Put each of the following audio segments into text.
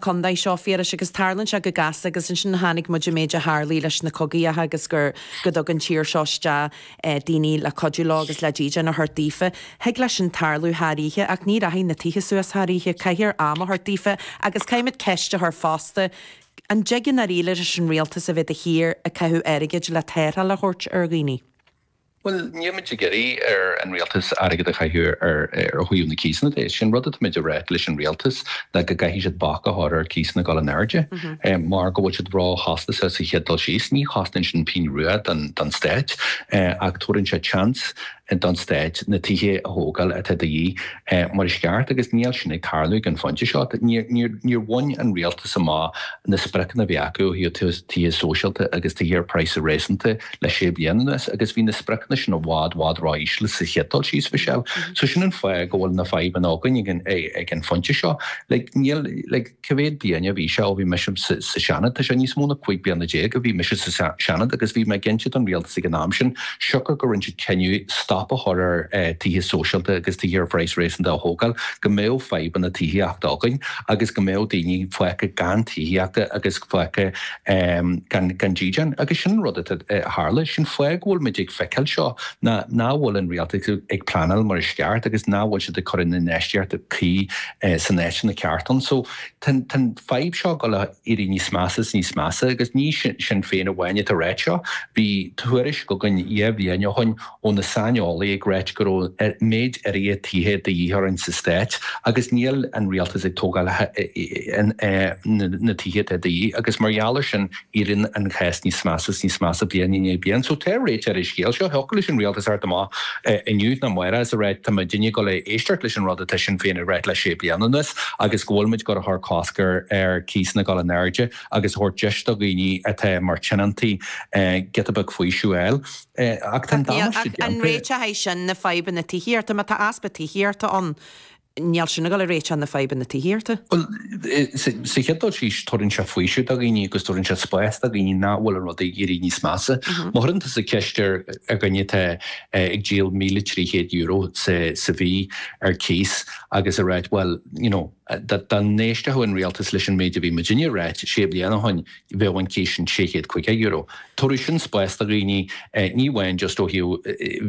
Condae seo, Phiarais, agus tarlann sé go gasta agus ansin chonaic muid an méid a tharlaigh leis na cogaíocha agus gur, go dtug an tír seo isteach daoine le cuidiú leo agus le dídean a thabhairt daofa. Thig leis sin tarlú thar oíche ach ní rachaidh na tithe suas thar oíche, caithfear am a thabhairt daofa agus caithfimid ceist a chur fosta, an dtig i ndáiríre leis an rialtas a bheith de shíor ag caitheamh airgid le tarrtháil a thabhairt ar dhaoine? Bhuel, nílimid ag iarraidh ar an rialtas airgead a chaitheamh ar thaobh na cíosanna de. Is é an rud atáimid a rá leis an rialtas ná go gcaithfidh siad bac a chur ar chíosanna ag dul in airde mar go bhfuil siad róchostasach sa chéad dul síos. Ní chosnaíonn sin pingin rua don stát ach tabharfaidh sé seans don stáit na tithe a thógáil atá de dhíth mar is ceart agus níl sin ag tarlú ag an phointe seo. Níor bhain an rialtas amach na spriocanna a bhí acu ó thaobh tithe sóisialta agus tithe ar praghsanna réasúnta. le sé bliana anuas agus bhí na spriocanna sin i bhfad, bhfad ró-íseal sa chéad dul síos, Michelle. So sin an fáth go bhfuil na fadhbanna againn ag an phointe seo. Like, níl, like, cé mhéad bliain a bhí sé ó bhí mise sa Seanad? Tá sé níos mó ná cúig bliana déag ó bhí mise sa Seanad agus bhí mé ag inse don Rialtas ag an am sin, siocair gur rinne siad cinneadh stop a chur ar tithe sóisialta agus tithe ar phraghas réasúnta a thógáil, go mbeadh fadhbanna tithíochta againn agus go mbeadh daoine fágtha gan tithíochta agus fágtha. gan dídean. Agus sin an rud a tharla. Sin an fáth go bhfuil muid ag feiceáil seo ná nach bhfuil an Rialtas ag pleanáil mar is ceart agus nach bhfuil siad ag cur an infheistíocht cuí san áiteanna ceart ann. So tá an fadhb seo ag dul a éirí níos measa is níos measa agus ní Sinn Féin amháin atá ag ráit seo. Bhí tuairisc againn dhá bhliain ó shin ó na saineolaí ag ráit go raibh méid áirithe tithe de dhíth orainn sa stáit agus níl an rialtas ag tógáil na tithe atá de dhíth agus mar gheall ar sin éiríonn an cás níos measa is níos measa bliain i ndiaidh bliain. So tá réiteach ar an scéal seo. Thiocfadh leis an rialtas a theacht amach inniu nó amárach is a ráit tá muidinne ag dul a éisteacht leis an rud atá Sinn Féin ag ráit le sé bliana anuas agus go bhfuil muid ag dul a chur cosc ar cíosanna ag dul in airde agus a thabhairt deis do dhaoine atá mar tionóntaí giota beag faoiseamh a fháil. Ach tá an damáiste déanta. An réiteach é sin na fadhbanna tithíochta? Má tá easpa tithíochta ann, níl sin ag dul a réiteach na fadhbanna tithíochta. Bhuel, sa chéad dul síos, tugann sé faoiseamh do dhaoine agus tugann sé spás do dhaoine nach bhfuil an rud ag éirí níos measa. Má chuireann tusa ceist ar dhuine atá ag díol €1,300 sa mhí ar cíos agus a ráit, bhuel, you know, Dá n-éistfeadh an Rialtas leis an méid a bhí muidinne ag ráit sé bliana ó shin bheadh an cíos sin €650. Tabharfaidh sin spás do dhaoine ní amháin just ó thaobh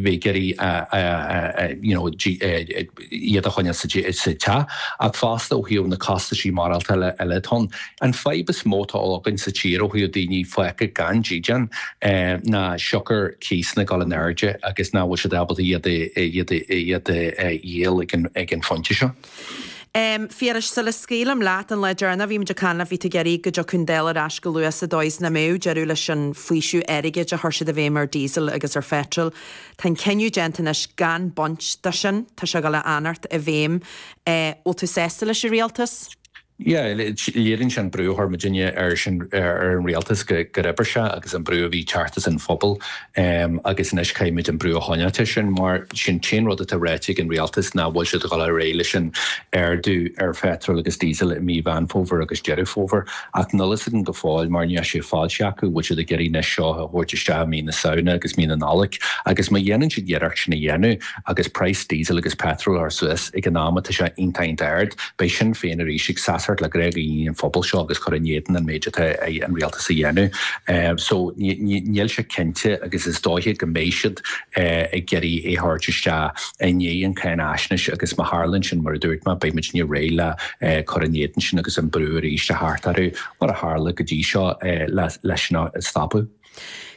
bheith ag iarraidh you know iad a choinneáil sa teach ach fosta ó thaobh na costaisí ginearálta eile atá ann. An fadhb is mó atá againn sa tír ó thaobh daoine fágtha gan dídean ná siocair cíosanna ag dul in airde agus nach bhfuil siad ábalta iad a dhíol ag an phointe seo. Em, Phiarais, sula scaoilim leat an lá deireanach bhí muid ag caint bhí tú ag iarraidh go dtiocfadh an Dáil ar ais go luath sa dóigh is nach mbeadh deireadh leis an bhfaoiseamh airgid a chuir siad i bhfeidhm ar diesel agus ar pheitril. Tá an cinneadh déanta anois gan baint do sin. Tá sé ag gabháil a fhanacht i bhfeidhm. Eh, bhfuil tú sásta leis an rialtas? Yeah, léiríonn sé an brú a chuir muid ar an rialtas gur oibrigh sé agus an brú a bhí thart sa phobal agus anois caithfidh muid an brú a choinneáilt ansin mar sin cé an rud atá ráite ag an rialtas nach bhfuil siad a dhul ar aghaidh leis an ardú ar phetrol agus diesel i mí Mheán Fómhair agus Deireadh Fómhair ach nil fhios againn go fóill mar níl sé ráite acu bhfuil siad ag iarraidh anois seo a thabhairt isteach i mí na Samhna agus mí na Nollag agus má dhéanann siad iarracht sin a dhéanamh Agus praghas Diesel agus Petrol ar suas ag an am atá sé iontach ard, beidh Sinn Féin arís ag seasacht le gné ar bith den phobal seo agus ag cur in éadan an méid atá an rialtas a dhéanamh. So níl sé cinnte agus is dóiche go mbeidh siad ag iarraidh é thabhairt isteach i ndiaidh an cháinaisnéis agus má tharlaíonn sin mar a dúirt mé beidh muidne réidh le cur in éadan sin agus an brú arís a thabhairt orthu mar a tharla go dtí seo le sin a stopadh.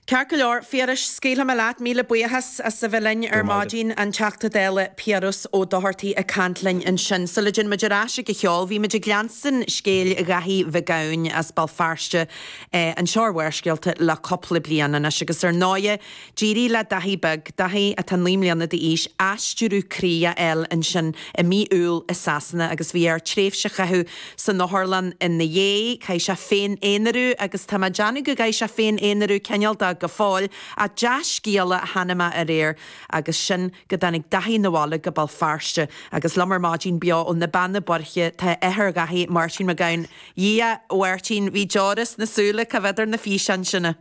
Ceart go leor, Phiarais, scaoilfidh mé leat. Míle buíochas as a bheith linn ar maidin. An Teachta Dála Piaras Ó Dochartaigh ag caint linn ansin. Sula dtéann muid ar ais ag an cheol, bhí muid ag leanstan scéal Dhaithí Mhic Gabhainn as Béal Feirste, anseo ar Bharrscéalta, le cúpla bliain anois. Agus ar ndóighe, d'éirigh le Daithí beag, Daithí atá naoi mbliana d'aois, aistriú croí a fháil ansin i mí Iúil i Sasana agus bhí air tréimhse a chaitheamh, san otharlann ina dhiaidh, chaith sé féin-aonarú agus tá mé ag déanamh go gcaithfidh sé féin-aonarú cineálta go fóill ach dea-scéala a tháinig amach aréir agus sin go dtáinig Daithí 'na bhaile go Béal Feirste agus liom ar maidin beo ó na Beanna Boirche tá athair Dhaithí, Máirtín Mac Gabhann, A Dhia, a Mháirtín, bhí deora sna súile, ag amharc ar na físeáin sin a.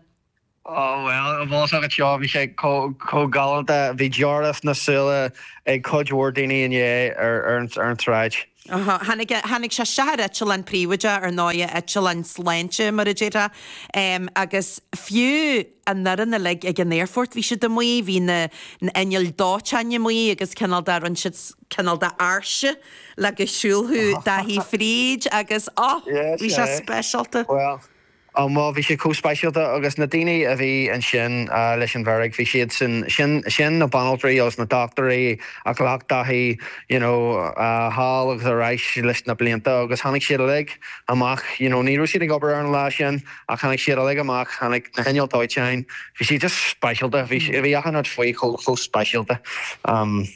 Oh bhuel, i bhfásach an tseó bhí sé chomh galánta, bhí deora sna súile ag cuid mhór daoine inné ar an tsráid. Aha, tháinig sé isteach ar eitleán príobháideach, ar ndóigh, eitleán sláinte mar a déarfá, agus fiú an fhoireann uilig ag an aerfort bhí siad amuigh, bhí na hinnill dóiteáin amuigh agus cineál de rinne siad cineál de áirse le go siúlfadh Dáithí fríd agus oh bhí sé speisialta. Ó maise bhí sé chomh speisialta agus na daoine a bhí ansin leis an bhfeirg, bhí siadsan, sin, sin na banaltraí agus na dochtúirí a ghlac Daithí you know thall agus ar ais leis na blianta agus tháinig siad uilig amach you know ní raibh siad ag obair ar an lá sin ach tháinig siad uilig amach, tháinig na hinnill dóiteáin, bhí sé just speisialta, bhí, bhí achan rud faoi chomh, chomh speisialta.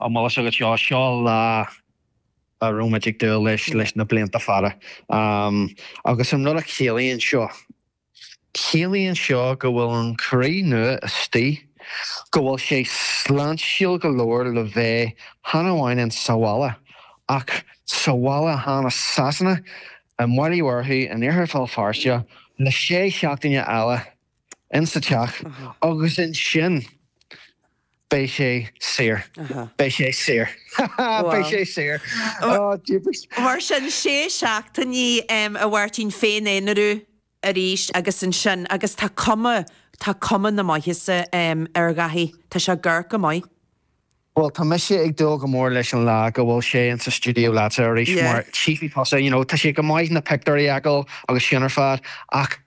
An bhfuil fhios agat seo, seo lá a raibh muid ag dúil leis leis na blianta fada agus an rud a chiallaíonn seo, ciallaíonn seo go bhfuil an croí nua istigh, go bhfuil sé sláintiúil go leor le bheith chan amháin in sa bhaile ach sa bhaile chan i Sasana, i mBaile Uí Mhurchú, in Iarthar Bhéal Feirste le sé seachtaine eile in sa teach agus ansin. Beidh sé saor. Beidh sé saor. Beidh sé saor. Oh jeepers. Mar sin, sé seachtainí a Mháirtín féin-aonarú arís agus ansin, agus tá cuma, tá cuma na maitheasa ar Dháithí. Tá sé ag amharc go maith. Bhuel, tá mise ag dúil go mór leis an lá go bhfuil sé in sa stiúideo leatsa arís mar tchífidh tusa, you know, tá sé go maith na pictiúirí a fheiceáil agus sin ar fad ach,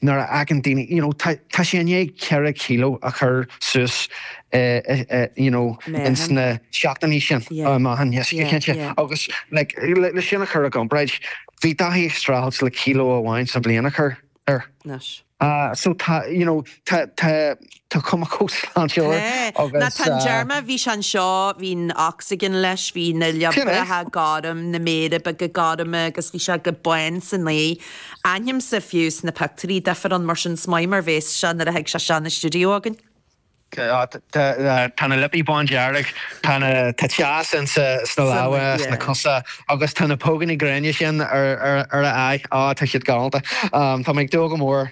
Nuair a fheiceann daoine, you know, tá, tá sé i ndiaidh ceithre kilo a chur suas eh, you know, ins na seachtainí sin. Yeah. Á, meáchan, yes, Yeah, cinnte. yeah. Agus, like, le, le sin a chur i gcomparáid, bhí Dáithí ag streachailt le kilo amháin sa bhliain a chur air. Anois. Ah, so tá, you know. Tá cuma chomh sláintiúil agus. Ó tá an t-am deireanach a, bhí sé anseo, bhí an oxygen leis, bhí na liopaí gorm, na méara beaga gorma agus bhí sé go bán san aghaidh. Aithnímse fiú sna pictiúirí difear ann mar sin is maith mar bhéas sé nuair a thig sé isteach 'na stiúideo againn. Tá na liopaí bándearg, tá na tá teas insa sna lámha sna cosa agus tá na póganna gréine sin ar a aghaidh. Á tá siad galánta. Tá mé ag dúil go mór.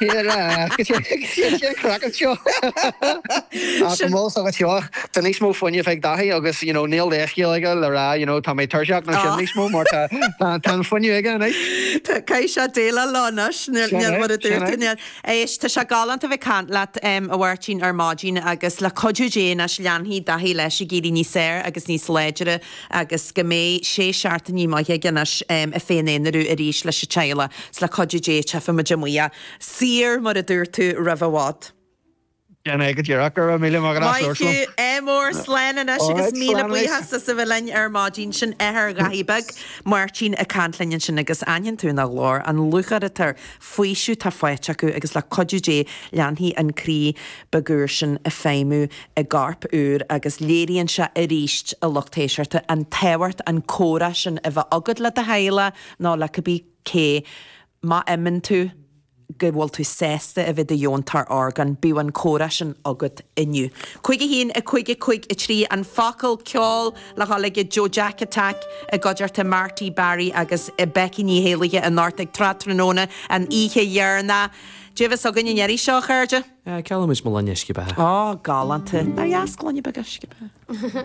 Here, agus sé agus sé an craiceann seo ach go Sin mall sa seo tá níos mó fuinneamh ag Dáithí agus you know, níl leithscéal aige le rá you know, tá mé tuirseach nó sin á. níos mó mar tá tá tá an fuinneamh aige anois. Tá caoi saoil eile ann anois nuair mar a dúirt tú. Éist, tá sé galánta bheith caint leat um, a Mháirtín ar maidin agus le cuidiú Dé anois leanfaidh Dáithí leis ag éirí níos fearr agus níos láidre agus go mbeidh sé seachtainí maithe aige anois ag féin-aonarú arís leis an teaghlach. Is le cuidiú Dé tchífidh muid amuigh, saor mar a dúirt tú roimh i bhfad. Sin é go díreach. Go raibh míle maith agat as labhairt liom. Ádh mór slán anois agus míle buíochas as a bheith linn ar maidin. Sin athair Dháithí Bhig, Máirtín ag caint linn ansin agus aithníonn tú ina ghlór an lúcháir atá air faoiseamh atá faighte acu agus le cuidiú Dé leanfaidh an croí beag úr sin ag feidhmiú i gcorp úr agus léiríonn sé arís a lucht éisteachta an tábhacht an comhrá sin a bheith agat le do theaghlach nó le cibé cé má mheasann tú go bhfuil tú sásta a bheith i do dheontóir orgán bíodh an comhrá sin agat inniu. 51, 5, 5, 3, An focal ceoil. Le dhul ag Joe Jack Attack i gcuideachta Marty, Barry agus Becky Ní hÉallaithe anocht ag Tráth Tráthnóna an oíche dheireanach. Dá bhfios againn an ndéarfaidh seo, a chairde? Geallaimid mo lainne uisce beatha. Galánta. Nár dheas gloine beag uisce beatha?